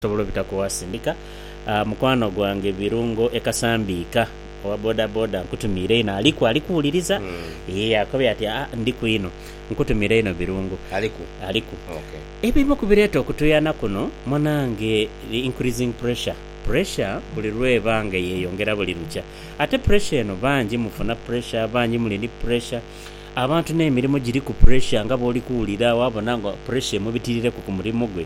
Osobola obita ku Wasindika mukwano gwange Birungo e Kasambiika owa bodaboda nkutumiire inho aliku ali kuwuliriza eeh akobye ati aa ndiku inho nkutumiire inho Birungo. Aliku? Aliku. Ok. Ebimu ku bireeta okutuyana kuno munange the increasing pressure. Pressure buli lw'eba nga eyeyongera buli lukya. Ate pressure eno bangi mufuna pressure, bangi muli ni pressure. Abantu n'emirimu giriku pressure nga bw'oli kuwulira waabona nga pressure emubitirireku ku murimu gwe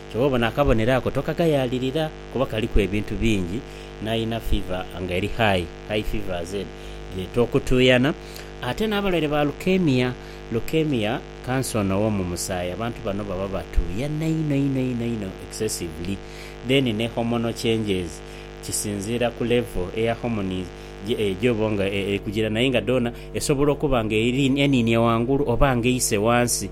Kyoba obona akabonero ako tokagayaalirira kuba kaliku ebintu bingi n'alina fiva nga eri high, high fever as in dheeta okutuuyana, ate n'abalwaire ba leukemia, leukemia kansa ono ow'omu musaayi abantu bano baba batuuyana inho inho inho inho excessively. Then ne hormonal changes kisinziira ku level eya hormones gy'oba nga eri kugira naye nga dhoona esobola okuba nga eri eninie ghangulu oba nga eise ghansi.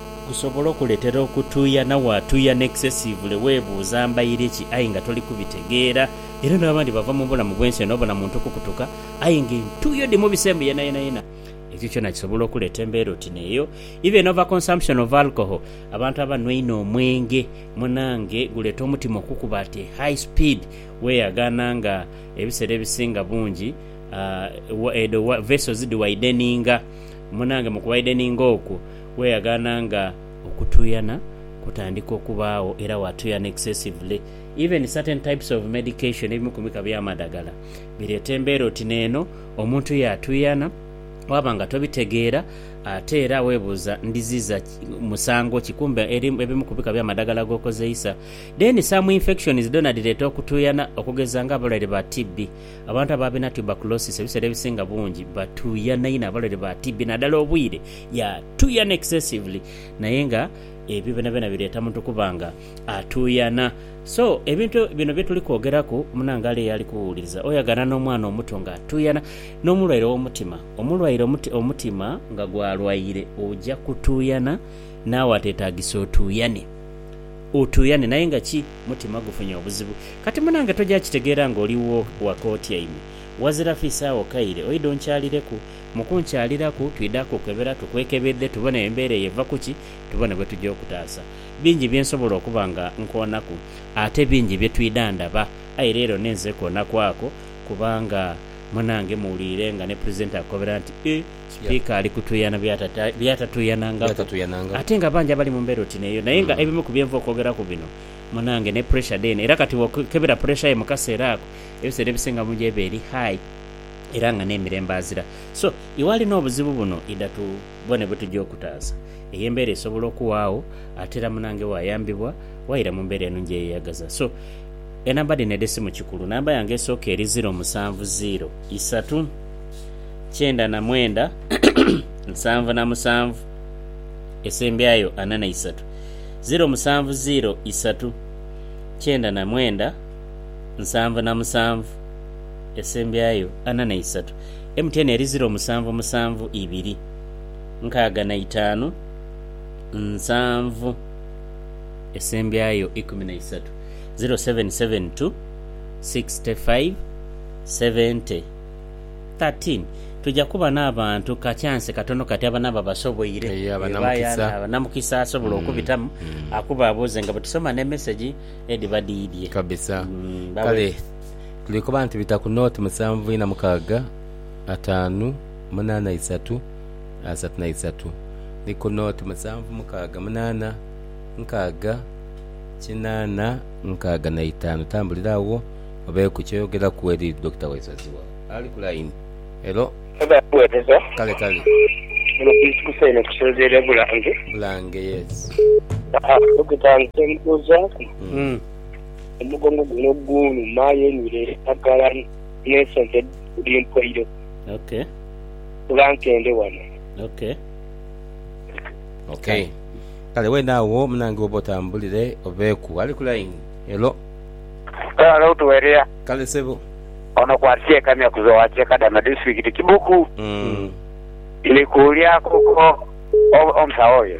Gusobola okuletera okutuya na watuuyana excessively webuuza mbaire ki aye nga toli kubitegeera era n'abandi bava mu bulamu bwensi eno obona muntu kukutuka aye nga entuuyo dhi mubise mbu yena yena yena ekyo kyona kisobola okuleeta embeera oti neeyo even over consumption of alcohol abantu abanwa einho omwenge munange guleeta omutima okukuba at a high speed weyagaana nga ebisera ebisinga bungi eeh edo vessels dhi wideninga munange mu ku wideninga okwo Weyaghana nga okutuyana kutandika okubaagho era watuyana excessively. Even certain types of medication, ebimu ku mika bya madagala, bireeta embeera oti neeno, omuntu yaatuyana waba nga tobitegeera ate era webuuza ndiziza musango ki kumbe ebimu ku bika bya madagala gokozeisa. Then some infections dhoona dhireeta okutuyana okugeza nga abalwaire ba TB. Abantu ababina tuberculosis ebiseera ebisinga bungi batuyana inho abalwaire ba TB nadala obwire Yeah tuuyana excessively naye nga ebyo byonabyona bireeta muntu kuba nga atuuyana. So ebintu bino bye tuli kwogeraku munange ali eyali kuwuwuliriza oyagana n'omwana omuto nga atuuyana n'omulwaire w'omutima. Omulwaire omuti omutima nga gwalwaire oja kutuuyana naawe ateetaagisa otuuyane. Otuuyane naye nga ki mutima gufunye obuzibu. Kati munange toja kitegeera ng'oli wo waka otyaime wazira fiisa agho kaire oidhe onkyalireku. Mu kunkyaliraku, twidha kukebera tukwekebedhe tubone embeera eyo eva ku ki, tubone bwe tuja okutaasa. Bingi bye nsobola okuba nga nkoonaku, ate bingi bye twidha ndaba. Aye leero ninze koonaku ako, kubanga munange muwuliire nga ni Pulezidenti akukobera nti, E, Sipiika ali kutuuyana by'atatuuyanangaku. Ate nga bangi abali mu mbeera oti n'eyo. Naye nga ebimu ku bye nva okwogeraku bino, munange, ne puresha dheene. Era kati bw'okebera puresha yo mu kaseera ako, ebiseera ebisinga mu yo eba eri high. era nga n'emirembe azira. So, iwali n'obuzibu buno idha tubone bwetuja okutaasa. Eyo embeera esobola okuwaagho ate era munange wayambibwa waira mu mbeera enungi eyeyagaza. So, enamba dhino edh'esimu kikulu. Namba yange esooka eri ziro musanvu ziro isatu kyenda na mwenda nsanvu na musanvu esembyayo ana na isatu. Ziro musanvu ziro isatu kyenda na mwenda nsanvu na musanvu. esembyayo ana na isatu, MTN eri ziro musanvu musanvu ibiri nkaaga na itaanu nsanvu esembyayo ikumi na isatu, ziro seven seven two, sixty five, seventy, thirteen. Tuja kuba n'abantu ka kyansi katono kati abanaba basoboire, Eeh, abanamukisa. ebaaya namukisa asobola okubitamu akubabuuze nga bwe tusoma n'emesegi edhiba dhiidhye. Kabisa. Mm, bawe- Kale Liri kuba nti bita ku nooti musanvu ina mukaaga ataanu munaana isatu asatu na isatu ni ku nooti musanvu mukaaga munaana nkaaga kinaana nkaaga na itaanu. Tambulira agho obe ku kyoyogeraku eri Dokita Waisozi wo ali ku layini. Helo. Oba Weereza. Kale kale. Muno ku ikusa eno tusinziira e Bulange. Bulange, yes. Haa, Dokita nze mbuuzaaku. Omugongo guno gunuma aye nywire endagala n'ensonta edhiri mpoire. Bula nkende wano. Ok. Kale weene agho munange woba otambulire obeeku. Ali ku line. Hello. Hello to Eria. Kale sebo. Ono kwatsi e Kamya ku Zowa Kyekadama District Kibuku. Ndikuulyaku ko omusawo oyo.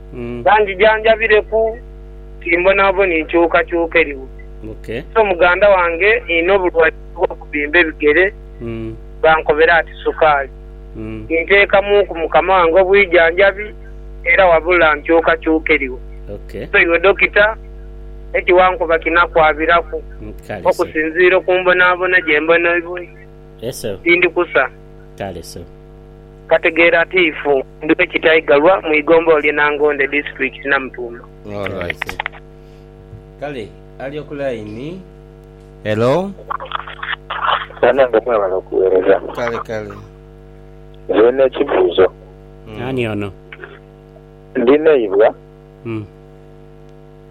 Banjijanjabireku timbonaboni nkyukakyuka eriwo. So muganda wange nina obulwaire obw'okubimba ebigere bankobera ati sukaali. Ninteekamuuku mukama wange obwijanjabi era wabula nkyukakyuka eriwo. So iwe dokita eki wankoba kinakwabiraku okusinziira ku mbonabona gyembonaiboi? Tindi kusa. Kategeera atiifu ndi we Kitaigalwa mu igombolola lye Nangonde disitulikiti Namutumba. Alright kale ali oku line. Hello. Banange mwebale okuwereza. Kale kale. Nze Nina ekibuzo. Ani ono? Ndi neibwa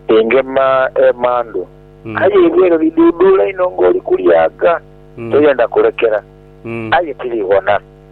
engema emandhu aye eibwa eryo lidhuudhuula inho nga oli kulyaga toyenda kulekera aye tiriwona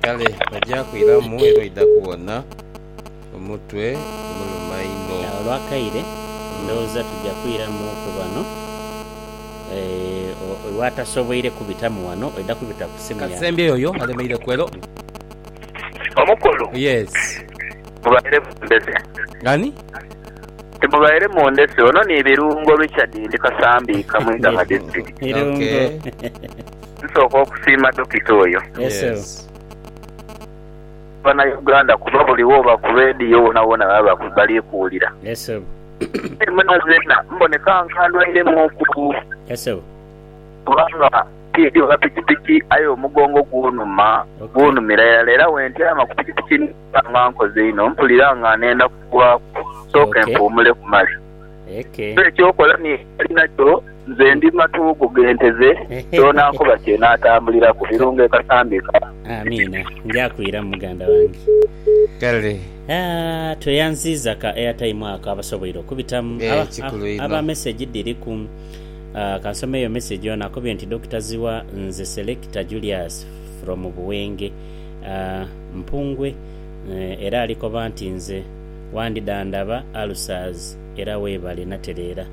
Kale ojja kwiramu era oidha kuwona. Omutwe gumuluma inho. Agho lwakaire ndhoghoza tuja kwiramu ku bano eeh watasoboire kubitamu wano oidha kubita ku simu ya. Kasembye yoyo alemeire ku hello. Omukulu. Yes. Mubaire mundese. Ani? Nti mubaire mundese. Ono ni Birungo Richard ndi Kasambiika mu Iganga District. Birungo. Okay. Nsooka okusiima Dokita oyo. Yes. Bana Uganda kuba buli woba ku radio wona wona baba bali kuwulira. Yes sebo. Aye mwena zena mboneka nga ndwairemu ku. Yes sebo. Kubanga ntidhi oba pikipiki aye omugongo gunuma gunumira irala era wentyama ku pikipiki mba nga nkoze inho mpulira nga nenda kugwaku. Nsooke mpuumuleku male. Ate eky'okola ni ali nakyo, nze ndi matuugu g'ente ze, kyona ankoba kye naatambuliraku. Birungo e Kasambi ka. Amiina. Nja kwiramu muganda wange. Kale. Aah tweyanziiza ka airtime ako abasoboire okubitamu. Eeh kikulu inho. Aba message dhiriku. Aah kansome eyo message ono akubye nti Dokita Zziwa nze Selector Julius from Buwenge aah Mpungwe era alikoba nti nze. wandidhandhaba Ulcers era webale natereera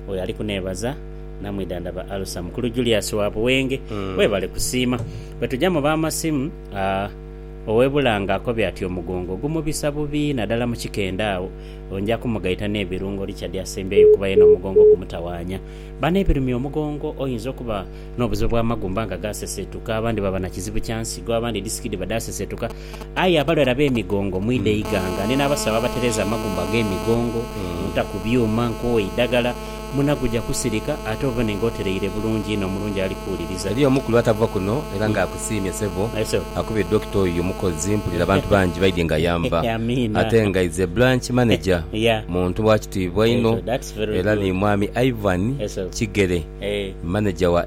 oyo ali kuneebaza namwidhandhaba Ulcer mukulu Julius wa Buwenge webale kusiima bwetuja mu ba masimu aah owe Bulange akobye ati omugongo gumubisa bubi nadala mu kikendhe agho onja kumugaita nebirungo Richard asembyeyo kuba yena omugongo gumutawanya bano ebirumya omugongo oyinza okuba nobuzibu bwa magumba nga gasesetuka abandi baba nakizibu kya nsigo abandi disiki dhiba dhasesetuka Aye abalwere ab'emigongo mwidhe eighanga, ni n'abasawo abatereeza amagumba ag'emigongo, muta ku byuma, nkowe idagala, muna guja kusirika, ate obone nga otereire bulungi inho, omulungi ali kuwuliriza. Eriyo omukulu atava kuno era nga akusiimye sebo. Aye sebo. Akubye Doctor oyo mukozi mpulira abantu bangi baidye nga yanva. Amiina. Ate nga is a branch manager, Yeah. muntu wa kitiibwa inho Ekyo, that's very era good. ni mwami Ivan Yes, sebo. Kigere, Eh. manager wa.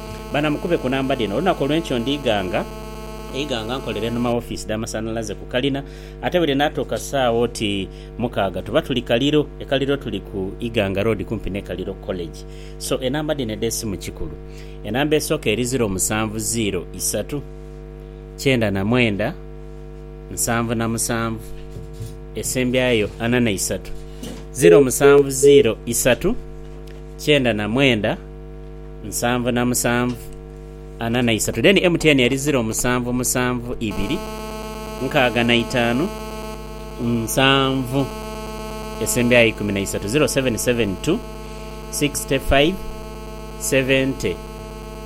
banamukube ku namba dhino, Olunaku olw'enkyo ndiighanga eighanga nkolere enhuma w'ofiisi dh'amasanhalaze ku kalina, ate buli naatuuka saagha oti mukaaga tuba tuli Kaliro. E Kaliro tuli ku Iganga Road kumpi n'e Kaliro College. So, enamba dhino edh'esimu kikulu. Enamba esooka eri ziro musanvu ziiro isatu kyenda na mwenda nsanvu na musanvu. Esembyayo ana na isatu ziro musanvu ziiro isatu kyenda na mwenda. Nsanvu na musanvu, ana na isaatu. Then MTN eri ziro musanvu musanvu ibiri nkaaga na itaanu nsanvu esembayo aye ikumi na isaatu 0772 65 70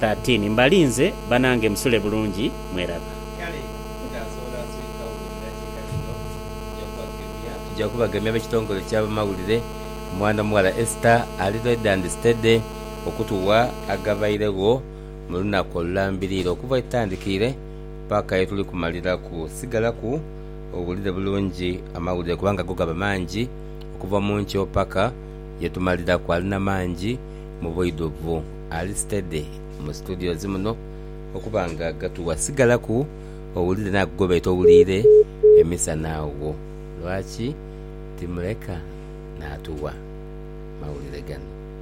13 mbalinze banange musule bulungi mweraba. Kale mutaasoola nswika wuulira kika kino, nja kubagemya. Tujja kubagemya ab'ekitongole ky'abamawulire, Omwana omuwala Esther ali red and steady. okutugha agabairegho mu lunaku olulambiriire okuva yetutandikiire paka yetuli kumaliraku. Sigalaku owulire bulungi amawulire kubanga go gaba mangi okuva mu nkyo paka yetumaliraku. Ali na mangi mu bwidhuvu, ali steady mu studios muno okuba nga gatugha. Sigalaku owulire naago gobaire towuliire emisana agho. Lwaki timuleka natugha mawulire gano?